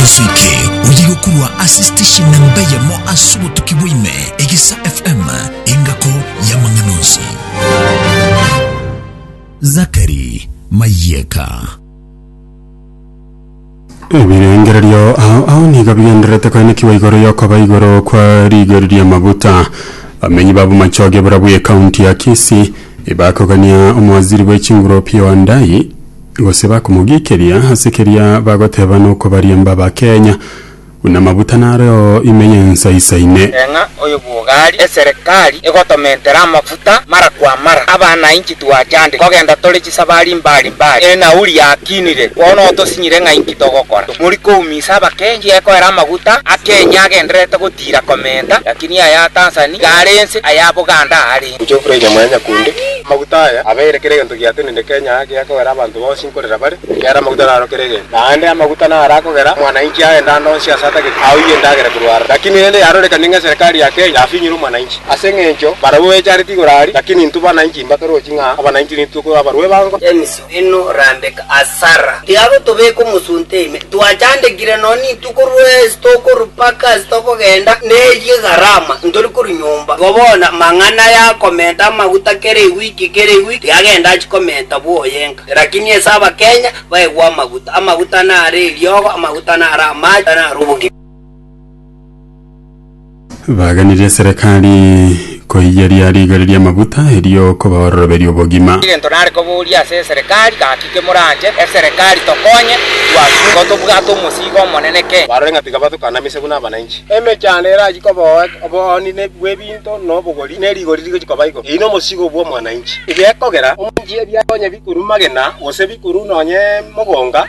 Asoike oye gokurwa ase station namba eyemo ase obotuki bwaime, Egesa FM, engako y'amang'ana onsi. Zakari Mayeka. Ebirengererio ao ao nigo bigendererete koenekigwa igoro y'okoba igoro kwa rigori ri'amabuta. Abamenyi ba Bomachoge bura bw'ekaunti ya Kisii bakogania omowaziri bw'echinguropi Wandai Gose bakomogikeria ase keria bagoteba nokobariemba bakenya, buna amabuta nareo ime y'ensa isaine. Eng'a oyo bwogari eserekari egotomentera amafuta mara kwa mara, abanainchi twachande kogenda tore chisabari mbari mbari, enauri yakinire, bono otosinyire ng'a inki togokora? Tomori kouminsa abakengi, ekoera amaguta a Kenya agendererete gotira komenta, lakini aya a Tanzani iga are ense, aya a Buganda are. Gochia okure inyama ya nyakundi. Amaguta aya abeire kera egento giatenende Kenya ake akogera abanto bonsi nkorera bare, ekiagera amaguta naro kera egento. Naende amaguta naro akogera omwananchi agende ande onsi ase atagete aoyie endagera korwa are. Lakini rende yarorekanie ng'a eserekari ya Kenya yafinyire omwananchi. Ase engencho barabwo bechareti igoro aria, lakini intwe bananchi mbatorochi ng'a abananchi nintwe ko abarwa ebango. Denis Inwe Rabeka na Sara, tiagotobeka omosunte ime, twachandekire nonya rituko rwensi tokorua mpaka ase tokogenda, na eyio egarama ntori korua nyomba. Igo bono amang'ana aya akomenta amaguta kera ewiki kera ewiki tiagenda achikomenta bw'oyenka, lakini ase abakenya baegwe amaguta, amaguta nare eriogo, amaguta nare amache, nare obogima. Baganirie eserekari koiyeria rigori ri'amaguta, erio koba ororoberio obogima. Egento nare koboria ase eserekari, gaki kemoranche eserekari tokonye twasurwa tobwate omosiigo omonene kei. Barore ng'a tiga batokanamisie buna abananchi. Emechando erachie koboa obooni bw'ebinto na obogori, ne rigori rigochia koba igoro. Eyio nomosiigo bw'omwananchi. Egekogera omonanchi ebiato onye bikorua magena, gose bikorua nonye mogonga,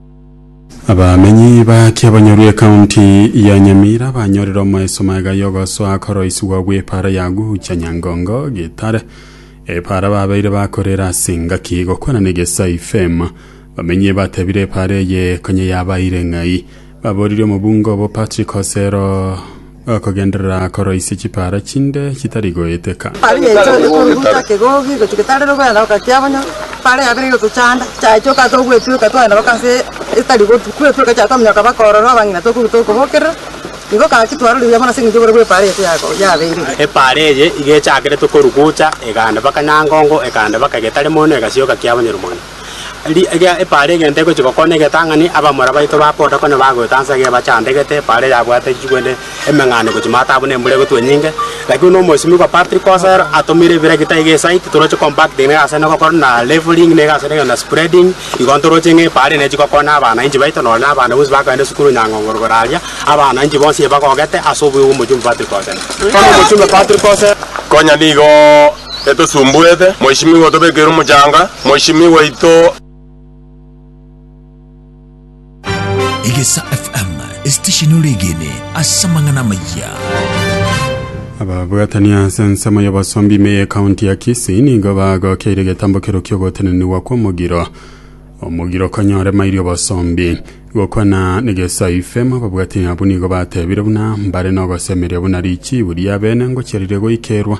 Abamenyi ba Kiabonyoru ekaunti ya Nyamira banyorire omoeso maega y'ogosoa koroisigwa gw'epaara ya Gucha Nyangongo Gitare epaara babeire bakorera ase engaki gokwana n'egesai fame bamenyi batebire epaara eye konya yabaire ng'ai baboririe omobunge obo Patrick Osero Okogenderera korwa ise chipaara chinde chitari goeteka. Aria Yesu aria koruruta kegogi egochia getarera ogoenda gokakea bono epaara yabere egotochanda, chiachia okata ogwetweka twaenda mpaka ase etari gotu, kwetweka chiato omonyo okaba okoorora abang'ina tokoruta okobokerera, nigo gaki twarora ebiya mono ase engencho oboru bw'epaara yaito yako yabeire. Epaara eye iga echakerete korwa gocha, egaenda mpaka nyangongo, egaenda mpaka getari mono, egasioka kiabonyeru mono. Riiri eria epaara egento egochia gokona egetang'ani, abamura baito ba boda konya bagoeta ansa iga ebachandegete, epaara eyabwate chigwene emeng'ane gochia maata abwo na embura egotwa enyinge. Lakini buna omoisimigwa Patrick Osero atomire ebirekita iga esite, toroche compacting na egasi ende gokora na leveling na egasi ende kegenda spreading, igo ntoroche ng'a epaara ende chigokona abanainchi baito nonye na abana bonsi bakoenda esukuru Nyang'ongoro igoro aria, abanainchi bonsi ebagogete ase obuya bw'omochumba Patrick Osero. Bono omochumba Patrick Osero. Konya nigo. Getosumbuete, Mweshimiwa otobekeire omochanga, Mweshimiwa oito. Egesa FM, esitesheni oregene ase amang'ana amayia. Ababwatani ase ensemo y'obosomba ime y'ekaunti ya Kisii nigo bagokeire egetambo kerokio ogotenenigwa kw'omogiro omogiro konyore mairi obosombi. Gokwana negesai fame ababwatani abwo nigo batebire buna mbare nogosemeria buna richibu riabene ngochiarire goikerwa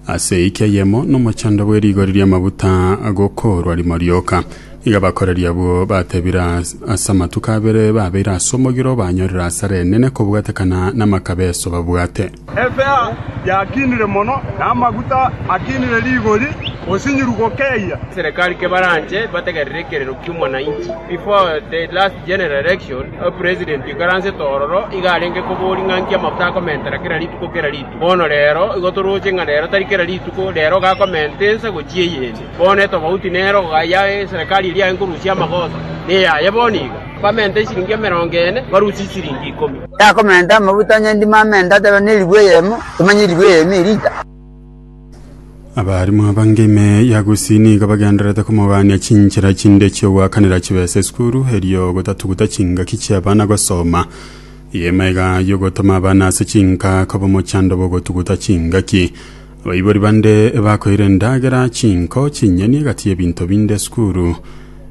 Ase eike eyemo nomochando bwe rigori ri'amaguta agokoorwa rimo rioka. Iga abakoreri abwo batebire as- ase amatuko abere babeire ase omogiro banyorire asara enene kobwatekana namakabeso babwate. Efeha yakinire mono, na amaguta akinire rigori, osinyiru gokeyia. Serikali ke baranche bategerere ekerero ki'omwananchi. Before the last general election, a president ikaransete ororo iga arenge kobori ng'a nki amafuta akomentera kera rituko kera rituko. Bono rero, igo torooche ng'a rero tari kera rituko rero gakomenta ense gochia eyende. Bono etobauti nero ghaya eserekari eria yaye nkorusia amagoso neyaye bono iga. Bamenta esiringi emerongo ene, barusie esiringi ikomi. Yakomenta amaguta onye ndimo amenta ateba nerigwa eyemo, tomanye erigwa eyemo erita. Abarimu abange ime ya Gusii nigo bagendererete komogania chinchera chinde chi'ogoakanera chibesa esukuru erio gotatuguta chingaki chi'abana gosoma. Y'emaiga y'ogotoma abana ase chinka koba omochando bw'ogotuguta chingaki. Abaibori bande bakoire endagera, chinko, chinyeni egati y'ebinto binde esukuru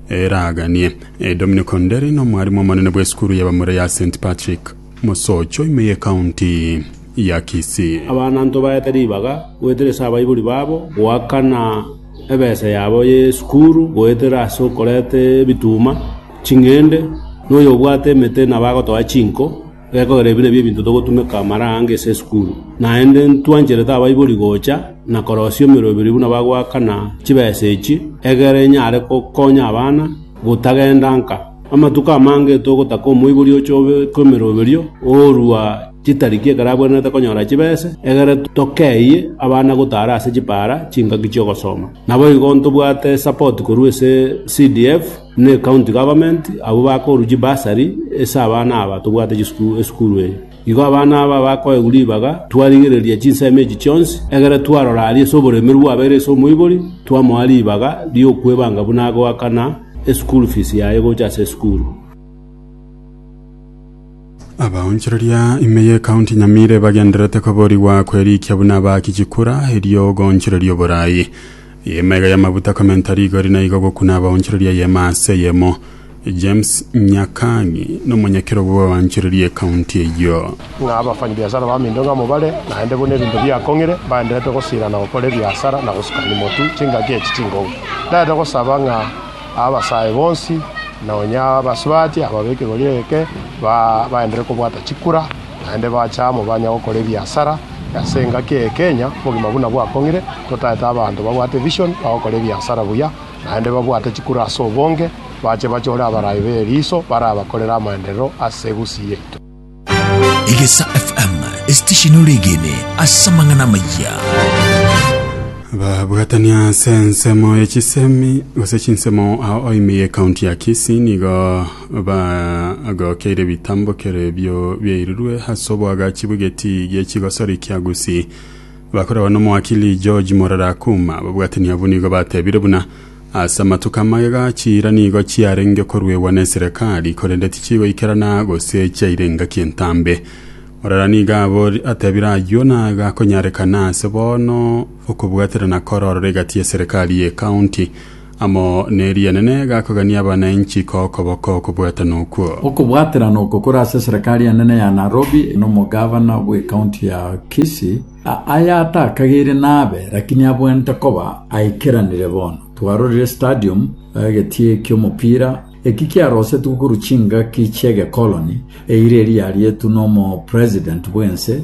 eraganie. Dominic Onderi n'omwarimu omonene bw'esukuru y'abamura ya St. Patrick, Mosocho, ime y'ecounty ya Kisii. Abana ntobaete ribaga goetera ase abaibori babo goakana ebesa yabo y'esukuru goetera ase okoreta ebituma. Ching'ende, noyobwate emete nabo agotoa chinko, gekogera ebi nabio ebinto togotumeka mara ange ase esukuru. Naende ntwancherete abaibori gocha na korosia emeroberi buna bagoakana chibesa echi, egere enyare gokonya abana gotagenda nka. Amatuko amange togotaka omoibori ochobe kw'emeroberio oorua chitariki ekero abwenerete konyora chibesa, egere tokeyie abana gotara ase chipaara chingaki chi'ogosoma. Naboigo ntobwate esapoti korwa ase CDF. Ne county government abwo bakoruchie bursary ase abana aba tobwate chisukuru esukuru eye. Igo abana aba bakoegwa ribaga twarigereria chinsemo echi chionsi, egere twarora aria ase oboremeru bwabeire ase omoibori, twamoa ribaga riokwebanga buna agoakana eschool fees yaye gocha ase esukuru. Abaonchoreria ime y'ekaunti Nyamira ebagendererete koborigwa kwerikia buna aba Kichikura erio goonchoreria oboraai. Y'eema iga y'amabuta komenta rigori na igo gokuna abaonchoreria y'eema ase eyemo. James Nyakang'i nomonyekero bwa abaonchoreria ekaunti eyio. Ng'a abafanyibiasara ba minto ng'amo bare, naende buna ebinto biakong'ire, mbagendererete gosiirana gokora ebiasara na gosukania motu chingaki echi ching'ou. Ndarete gosaba ng'a. Abasae bonsi, na onye abasubati ababekerwa rirereke, baenderere kobwata chikura, naende bache amo banye gokora ebiasara, ase engaki eye Kenya obogima buna bwakong'ire, totaete abanto babwate vision bagokora ebiasara buya, naende babwate chikura ase obonge, bache bachore abarai b'eriiso barabakorere amaenderero ase egusii yaito. Egesa FM, esitesheni ore egene ase amang'ana amayia. babwatania ase ensemo ya chisemi gose chinsemo ao oime ye county ya kisi nigo bagokeire bitambokero ebio biairirwe ase obwagachi bw'egeti gia chigosori kia gusii bakoragwa n'omowakili george morara akuma babwatani abwo nigo batebire buna Ase amatuko amagega chiira nigo chiarenge koruegwa neserekari, korende tichigoikerana gose chiaire engaki entambe. Morara nigo abori, atebire ayio nagakonyarekana ase bono okobwaterana korororo egati y'eserekari y'ecounty amo neri'enene gakogania abananchi kokoboko okobwatana okwo. Okobwaterana oko kore ase eserekari enene ya Nairobi nomogavana bw'ecounty ya Kisii, Aya atakagere nabe, lakini abwenerete koba aikeranire bono. Twarorire stadium, egetie ki'omopira, eki kiarosetwe korwa chingaki chi'egekoloni, eira eria yarietwe n'omopresident bw'ense,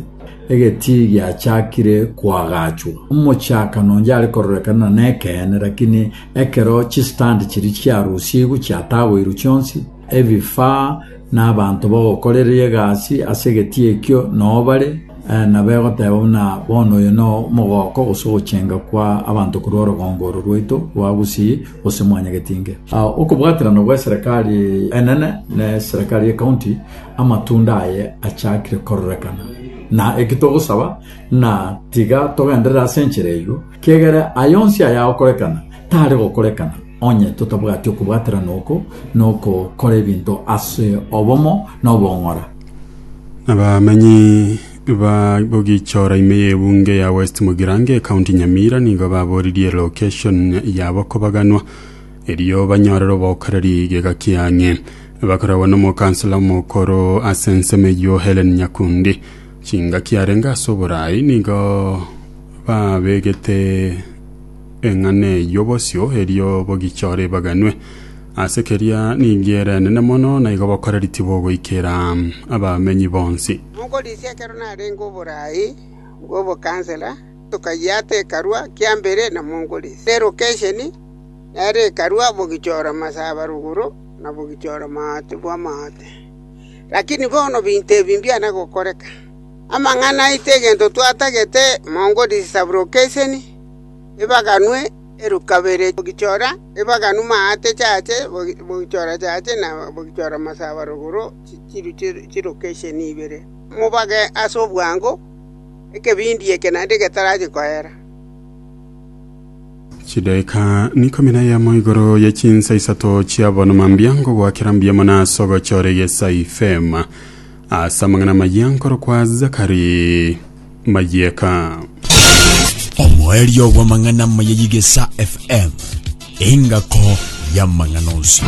egetii giachakire koagachwa. Omochakano onde are kororekana na nekeene, lakini ekero chistand chiria chiarusigwe chiatagoirwe chionsi, ebifaa na abanto bagokorereria egasi ase egetii ekio noo bare, na begoteeba buna bono oyo noo omogooko gose ogochenga kwa abanto korwa orogongo oro rwaito rwa Gusii gose Mwanyagetinge. Okobwaterana gwe Serekari enene ne Serekari ye County amatunda aye achakire kororekana, na eki togosaba ng'a tiga togenderere ase enchera eyio, kiagera aye onsi ayagokorekana tare gokorekana. Onye totabwati okobwaterana oko nokokora ebinto ase obomo na obong'ora. Abamenyi ba Bogichora ime y'ebunge ya West Mugirango ekaunti Nyamira nigo baboririe location yabo kobaganwa erio banyorere obokoreri gega kiang'e bakoragwa n'omokansela omokoro ase ensemo eyio Hellen Nyakundi chingaki arenge ase oborai nigo babegete Eng'ana eyio bosio erio bogichore baganwe. Ase keria ninki ere enene mono, na igo bokoreri tibogoikera abamenyi bonsi. Monkorisia ekero narenge oboraai bw'obokansela, tokayia ate ekarua kia mbere na Monkorisia erokesheni, nere ekarua bogichora masaba rogoro na bogichora maate bw'amaate. Lakini bono binto ebi mbiana gokoreka. Amang'ana aito egento twatagete Monkorisia sabrokesheni. ebaganwe erokabere bogichora ebaganwe maate chache bogichora chache na bogichora masaba rogoro chirwe chirokesheni ibere. Mobage ase obwango ekebindi eke naende getarache koera.” Chidaeka nikomi na eyemo igoro ye chinsa isato chiabonwa mambia ngogoakera mbuya mono ase ogochora egesai, fema. Ase amang'ana amayia nkorokwa Zakari Mayeka. Omoerio bw'amang'ana amaya y'Igesa FM, engako y'amang'ana onsi.